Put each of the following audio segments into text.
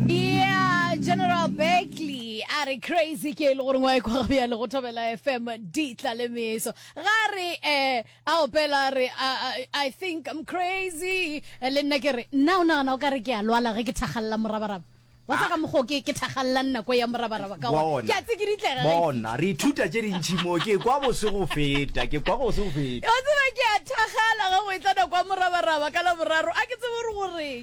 Yeah, General Beckley a re crazy ke e le gore ngwae kwa ya le go thobela fm di tla le meso ga re eh a opela re i think i'm crazy eh, le nna ke re nna o nagana o ka re ke a lwala ge ke thagalela morabaraba wa sa ka mokgwa o ke ke thagalelang nako ya morabaraba ka gore ke a tsikiditlega ge bona re ithuta tše dintšhi moo ke kwa bose go feta ke kwa bose go feta o tseba ke a thagala ge go e tla nako ya morabaraba ka laboraro a ke tsebe gore goreng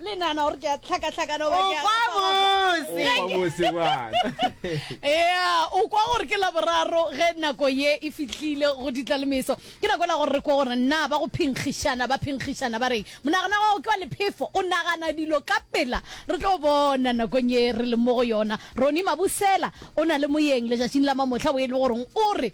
Le nana gore ke a tlhakatlhakana goba ke a Okwa bose. O kwa bose bana. Ea, o kwa gore ke Laboraro ge nako ye e fihlile go ditla le meso. Ke nako ela gore re kwe gore na ba go phenkgišana ba phenkgišana ba reng. Monagano wa gago ke wa lephefo, o nagana dilo ka pela. Re tlo bona nakong ye re leng mo go yona. Ronnie Mabusela o na le moyeng letšatšing la mamohla wo e le goreng o re.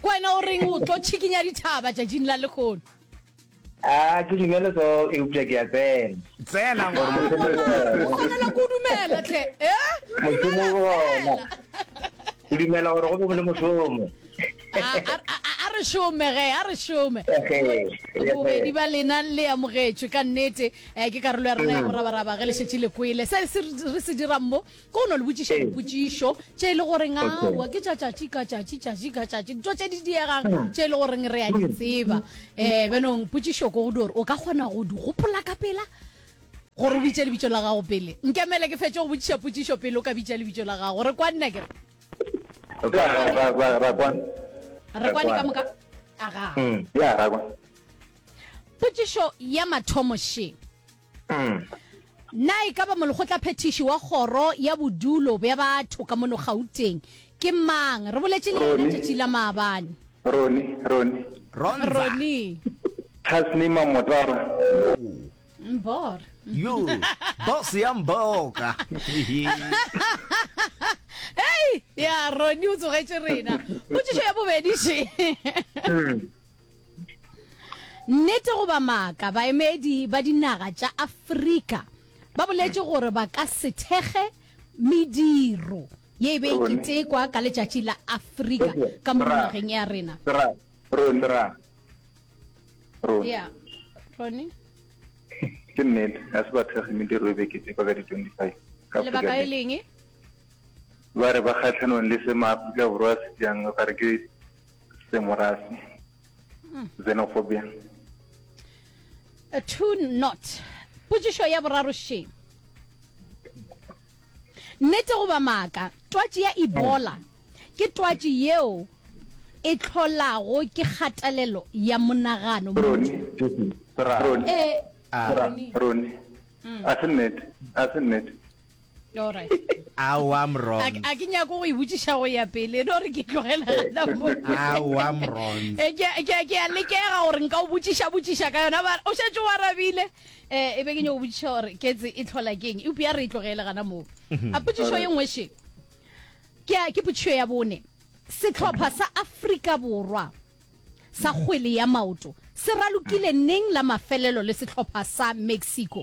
Ke wena o reng o tlo tšhikinya dithaba tšatšing la lehono? A ke dumele so, eupša ke a tsena. Tsena, ngwana. Gore mošomo o gona. O kgonela ke o dumela, hle. Eh? Mošomo o gona. Ke dumela gore go be go le mošomo. A re šome, ge, a re šome. Bobedi ba lena le amogetšwe, ka nnete. Ke karolo ya rena ya morabaraba ge le šetše le kwele se re se dirang mo. Ko no le botšiša dipotšišo tše e le goreng aowa ke tša tšatši ka tšatši tšatši ka tšatši dito tše di diegang hmm. tše e le goreng re a di hmm. tseba um benong potšišo ko go di gore o ka kgona go di gopola ka pela gore o bitše lebitso la gago pele nkemele ke fetse go botšiša potšišo pele o ka bitša lebitso la gago re kwa nna kere re kwane ka moka aga hmm, potšišo ya mathomo sheng Na e ka ba molekgotlaphethiši wa kgoro ya bodulo bja batho ka mono Gauteng ke mang? Re boletše le yena tšatši la maabane. Roni, Roni. Ronza. Roni. Tasnima Motara. Mbor. Yo, boss ya mboka. Hei, ya Roni o tsogetše rena. Potšišo ya bobedi še. Nnete goba maaka, baemedi ba dinaga tša Afrika ba boletše gore ba ka se thekge mediro ye e be e ketekwa ka letšatši la Afrika ka mo nageng ya rena. Yeah. Ronnie? ke nnete ga se ba thekge mediro e be e ketekwa ka di-25 Lebaka e leng? ba re ba kgatlhanong le se maaforika borwa a se jang ba re ke semorasi mm. xenophobia two not potsišo ya boraro she nnete goba maaka twatši ya ebola ke twatši yeo e tlholago ke kgatelelo ya monagano eh, ah. a se nnete a se nnete awa mron a ke nyako go ibotsiša go ya pele e no re ke tlogela awa mron eh, ke a lekega gore nka o botsiša botsiša ka yona ba o šetse wa rabile um e be ke nyako botsiša gore ketse e tlhola keng eupša ya re e tlogele gana moo mhm. a potsišo ye nngwe še ke potsišo ya bone setlhopha sa afrika borwa sa kgwele ya maoto se ralokile neng la mafelelo le setlhopha sa mexico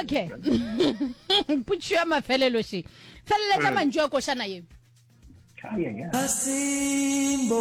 okay putšo ya mafelelo she feleletša mm. mantšu a košana ye asimbonanga